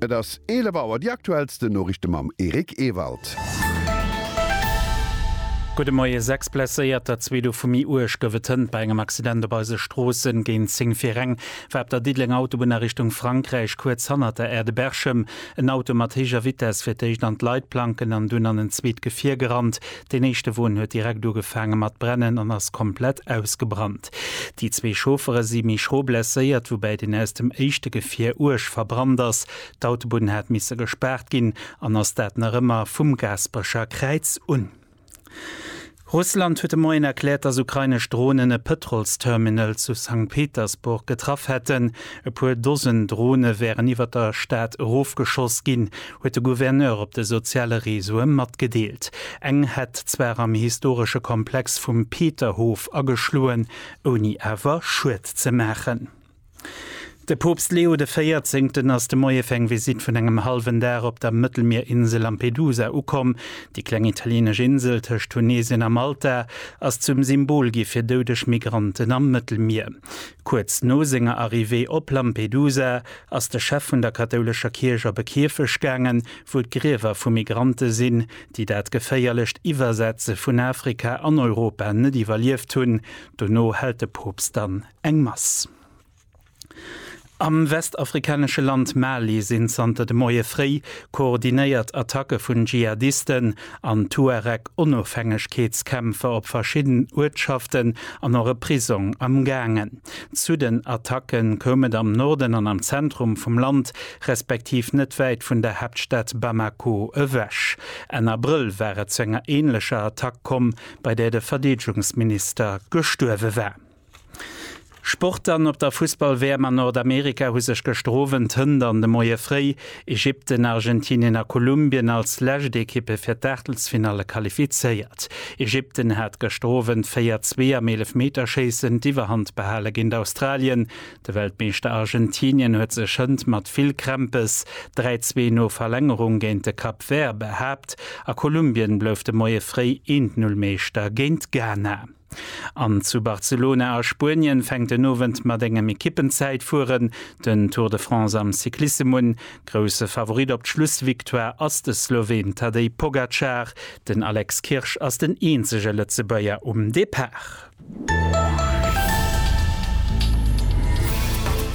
Et ass 11 Auer, déi aktuellsten Noriichte mam Eric Ewald. Gudde Moie. Sechs Blesséierter, zwee dovu méi uerg, gouf et hënt bei engem Accident op eise Stroossen. Géint 10 fir reng war op der Diddelenger Autobunn a Richtung Frankräich, kuerz hannert der Aire de Berchem, en Auto mat héijer Vitess fir d'éischt an d'Leitplanken an dunn an en zweet Gefier gerannt. Deen éischte Won huet direkt ugefaange mat brennen an ass komplett ausgebrannt. West. Déi zwee Chauffere si méi schro blesséiert, woubäi deen aus dem éischte Gefier uerg verbrannt ass. D'Autobunn hat misse gespaart ginn an ass dat nach ëmmer vum Gaasperecher Kräiz un. Russland huet de Moien erkläert, datt ukrainesch Dronen e Pëtrolsterminal zu Sankt Petersburg getraff hätten. E puer Dosen Drone wären iwwer der Stad erofgeschoss ginn. huet de Gouverneur op de soziale Reseaue matgedeelt. Eng hätt zwar am historesche Komplex vum Peterhof ageschloen, ouni awer Schued ze maachen. De Poopst Leo de Véierzéngten ass de Moie fir eng Visitt vun engem hallwen Dag op der Mëttelmierinsel Lampedusa ukomm. Déi kleng italieenesch Insel tëscht Tunesien a Malta ass zum Symbol gi fir doudeg Migranten am Mëttelmier. Kuerz no senger Arrivée op Lampedusa ass de Chef vun der kathoulescher Kierch op e Kierfecht gaangen, wou d'Griewer vu Migrante sinn, déi dat geféierlecht Iwwersetze vun Afrika an Europa net iwwerlieft hunn. Dono hält de Poopst dann eng Mass. Am westafrikanesche Land Mali sinn zanter de Moie fréi koordinéiert Attacke vun Dschihadisten an d'Tuareg Onofhängegkeetskämpfer op verschidden Uertschaften an och e Prisong am gaangen. Zu den Attacke koum et am Norden an am Zentrum vum Land, respektiv net wäit vun der Haaptstad Bamako ewech. Enn Abrëll war et zu enger änlecher Attack komm, bei där de Verdeedegungsminister gestuerwe war. Sport dann, Op der Fussball-WM an Nordamerika hu sech gëschter Owend Hënt an de Moie fréi Ägypten, Argentinien a Kolumbien als lescht Ekippe fir d'Aachtelsfinalle qualifizéiert. Ägypten hat gëschter Owend 4, 2 am Eelefmeterschéissen d'Iwwerhand behale géint Australien. De Weltmeeschter Argentinien huet sech Hënt mat vill Krämpes 3, 2 no Verlängerung géint de Cap Vert behaapt a Kolumbien blouf de Moie fréi 1, 0 Meeschter géint Ghana. An zu Barcelona a Spuenien fänkt den Owend mat engem Ekippenzäitfueren den Tour de France am Cyclissem un. Grousse Favorit op d'Schlussvictoire ass de Sloween Tadej Pogacar. Den Alex Kirsch ass den eenzege Lëtzebuerger um Depart.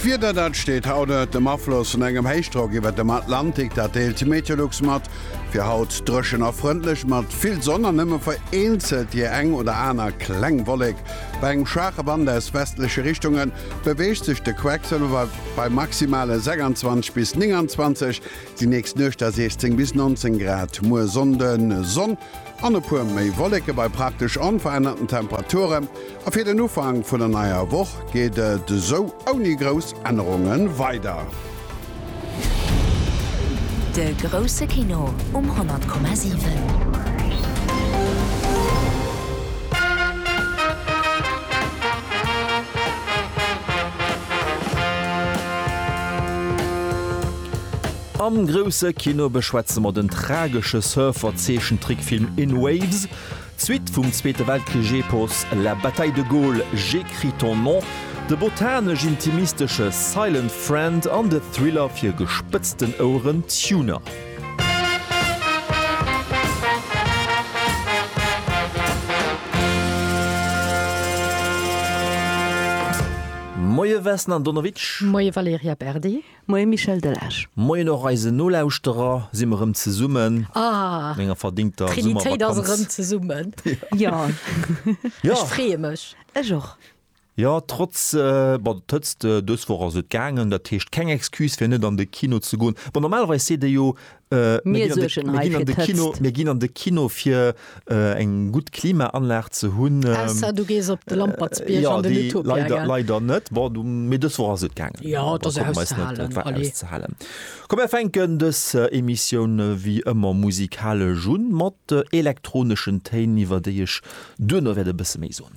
D'Wieder, dat steet haut ënnert dem Afloss vun engem Héichdrock iwwert dem Atlantik. Dat deelt d'Meteolux mat. Fir haut dréchen a frëndlech mat vill Sonn an nëmme vereenzelt déi eng oder aner kleng Wollek. Bei engem schwaache Wand aus westleche Richtunge beweegt sech de Quecksëlwer bei maximale 26 bis 29, déi nächst Nuecht da 16 bis 19 Grad. Muer Sonnden, Sonn. An e puer méi Wolleke bei praktesch onverännerten Temperature, a fir den Ufank vun der neier Woch geet et esou ouni grouss Ännerunge weider. De grousse Kino um 100,7. Am grousse Kino beschwätze mer den tragesche Surfer-Zeechentrickfilm In Waves, d'Suite vum Zweete Weltkrich-Epos La bataille de Gaulle, J'écris ton nom, de botanesch-intimistesche Silent Friend an de Thriller fir gespëtzten Oueren Tuner. Moie Vesna Donowitsch. Moie Valerija Berdi. Moien Michel Delage. Moien och eisen Nolauschterer. Si mer rëm zesummen an enger verdingter Summervakanz. Jo, ech freeë mech. Ech och. Jo, trotz der Hëtzt dës Woch ass et gaangen. Dat heescht keng Excuse fir net an de Kino ze goen. Bon, normalerweis seet ee jo, Mir suergen hei fir d'Hëtzt. Mir ginn an de Kino fir eng gutt Klimaanlag ze hunn. Ausser du gees op de Lampertsbierg an den Utopia. Jo, dee leider net. Bon, du, mee dës Woch ass et gaangen. Jo, et ass auszehalen. Et war auszehalen. Komm, mir fänken dës Emissioun wéi ëmmer musikalesch un, mat elektroneschen Téin, iwwer déi ech duerno wäert e bësse méi soen.